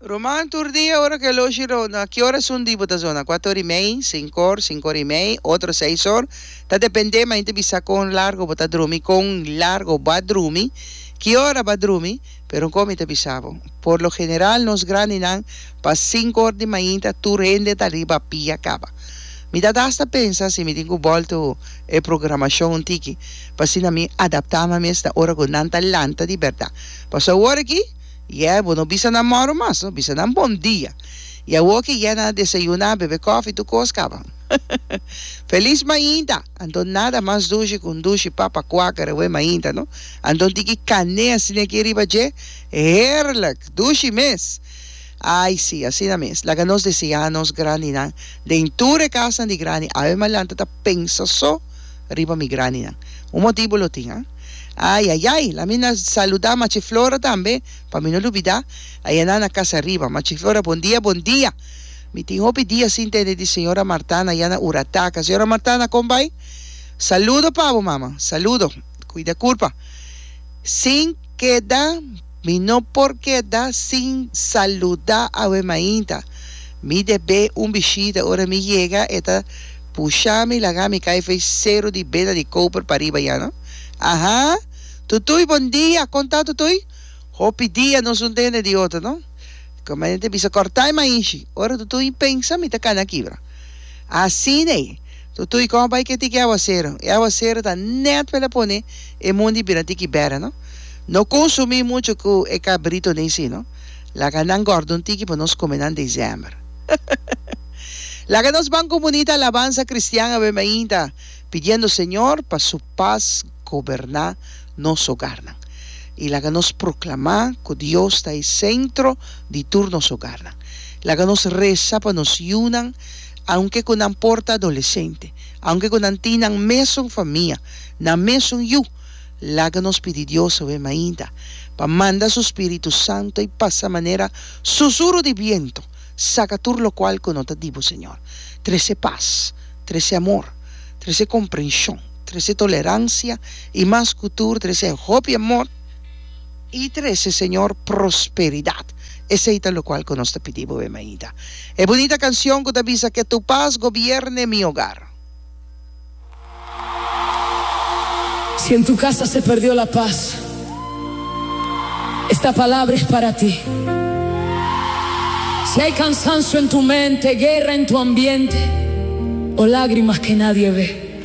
Roman, tur dia ora cu e loshi ronda, ki ora esun di bo ta zona? Cuato or y mei, cinco or, cinco or y mei, otro seis or, ta depende ma inte bisa con largo bo ta drumi, con largo bo a drumi, ki ora bo a drumi, pero con mi ta bisa bo, por lo general nos grandinan pa cinco or di mainta tur hende ta riba a pia caba. Mi ta hasta pensa si mi tin cu bolto e programacion un tiki, pa asina mi adapta mi mes na ora cu nan ta lanta di berdad, paso awor aki, Yeh, bo no bisa nan moro mas, no bisa nan bon dia. Y awoke yeh nan a desayuna, bebe kofi, tur kos kaba. Felis mainta! Anto nada mas dushi ku un dushi papa kwaka rewe mainta, no? Anto un tiki kané asina aki riba dje, heerlijk! Dushi mes! Ay, sí, asina mes. Laga nos deseá nos grandinan den tur e kasnan di grandi. Ave Malanta ta pensa so riba mi grandinan. Un motibu lo tin, a? Ay ay ay, la mi na saluda Machi Flora tambe, pa mi no lubida, ayana na kas ariba. Machi Flora, bon dia, bon dia. Mi tin hopi dia sin tende di Señora Martana ya na Urataca. Señora Martana, kon bai? Saludo pa bo, mama. Saludo. Cuida curpa. Sin keda. Mi no por keda sin saluda awe mainta. Mi debe un bishita. Ora mi yega e ta pusha mi laga mi kai fei seru di bena di koper pariba ya no. Aha! Tutuy bon dia! Kon ta Tutuy? Hopi dia nos un ta ene di otro no. Komandanti a bisa, Kortai mainshi! Ora Tutuy pensa mi ta kana kibra. Asin'ei. Tutuy kon bai ke tiki aguasero. E aguasero ta net mele pone e mundi bira tiki bera no. No konsumi mucho ku e kabrito nei si no. Laga nan gorde un tiki pa nos kome nan December. Laga nos ban ku bunita alabansa kristian awe mainta pidiendo Señor pa su pas goberna nos ogarnan. I laga nos proklama ku Dios ta e sentro di tur nos ogarnan. Laga nos resa pa nos yunan. aunke ku nan por ta adolesente, aunke ku nan tin nan mesun famia, nan mesun yu, laga nos pidi Dios awe mainta, pa manda su Spiritu Santu ei pasa manera susuru di bientu, saka tur lokual ku no ta di Bo, Señor. Trese pas, trese amor, trese komprenshon, trese toleransia i mas ku tur trese hopi amor, I trese Señor prosperidad. Esei ta locual cu nos ta pidi bo, Bem Ainda. E bunita cancion cu ta bisa Que tu paz gobierne mi hogar. Si en tu casa se perdió la paz Esta palabra es para ti Si hay cansancio en tu mente Guerra en tu ambiente O lágrimas que nadie ve.